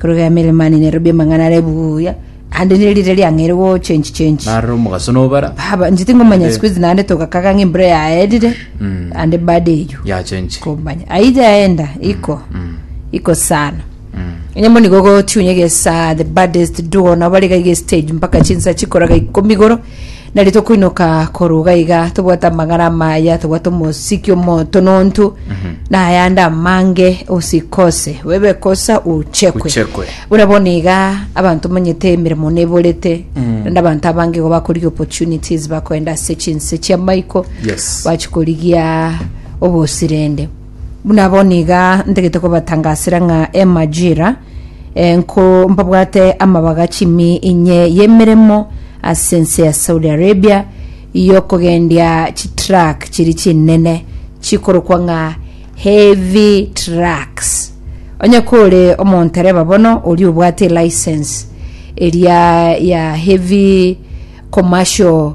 Korwa emeremo yane nerobio amang'ana are buya, naende nerire riang'eire gochenchi chenchi. Narora omogaso nobara. Baba, inche tingomanya Naende- siku hizi naende togakaga ng'a embura yaerire, Mm. naende baada eyio Yachenchi. komanya ayio yaenda iko Mm. iko sana Mm. onye moni gogotiunya egesa the baddest duo nabo bariga iga estage mpaka chinsa chikoraga ikomi igoro Na ritokoinoka korwa iga iga tobwate amagara amaya, tobwate omosiki omotonontu, na ayande amange, osikose, oebe kosa ochekwe. Ochekwe. Buna bono iga abanto monyete emeremo neborete, naende abanto abange igo bakorigia opportunities bakoenda ase chinse chi'amaiko, Yes. bachikorigia obosirende. Buna bono iga ntagete kobatangasera ng'a emajira eh, nko mbabwate amabaga chimi inye y'emeremo ase ense ya Saudi Arabia y'okogendia chitruck chiri chinene chikorokwa ng'a heavy trucks. Onye kore omontereba bono oria obwate license eria ya heavy commercial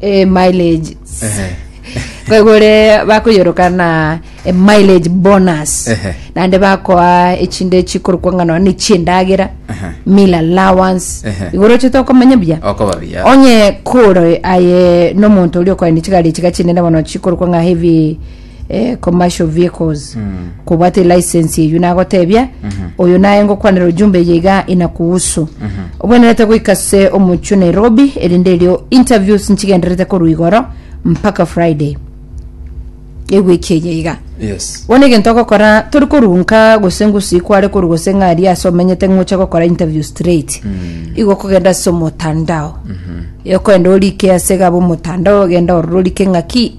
eh, mileage Ehe. kwegore bakoyoroka na eh, mileage bonus Ehe. naende bakoa echinde chikorokwa ng'a nonya nechiendagera Aha. meal allowance Ehe. igoro ochete okomenya buya okoba biya onye kore aye nomonto oria okoenda chigari chiga chinene bono chikorokwa ng'a heavy eh, commercial vehicles kobwate license eyu nagotebia oyo naye ngokwanera ujumbe eye iga inakuhusu obwenerete goika se omochio nairobi erinde erio interviews nchigenderete korwa igoro mpaka friday ewiki eye iga yes bono egento ogokora tori korunka gose ngusi kware koru gose ng'ari ase omenyete ng'oche gokora interview straight igo okogenda ase omotandao okoenda orike ase gaba omotandao ogenda ororo orike ng'aki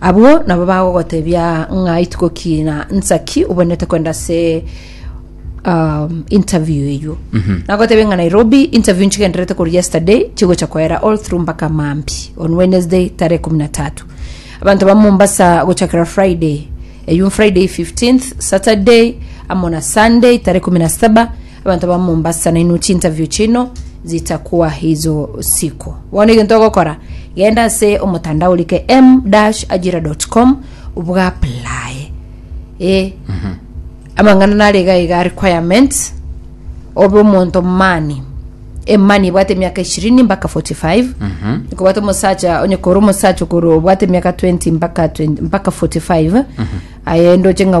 Abwo nabo bagogotebia ng'a ituko ki na nsa ki obwenerete kwenda ase um, interview eywo nagotebia ng'a nairobi interview nchigenderete koru yesterday chigocha koera all through mpaka mambi on wednesday tarehe kumi na tatu abanto ba mombasa gochakera friday eywo friday 15th saturday amo na sunday tarehe kumi na saba Abanto ba Mombasa nainwe chinterview chino zitakwa hizo siku bono egento ogokora genda ase omotandao orike m-ajira.com bwaplaye e amang'ana nare iga iga requirements obe omonto mani emani ebwate emiaka ishirini mpaka 45 ikobwate omosacha onye kore omosacha okoro obwate emiaka 20 mpaka 20 mpaka 45 aye ndoche ng'a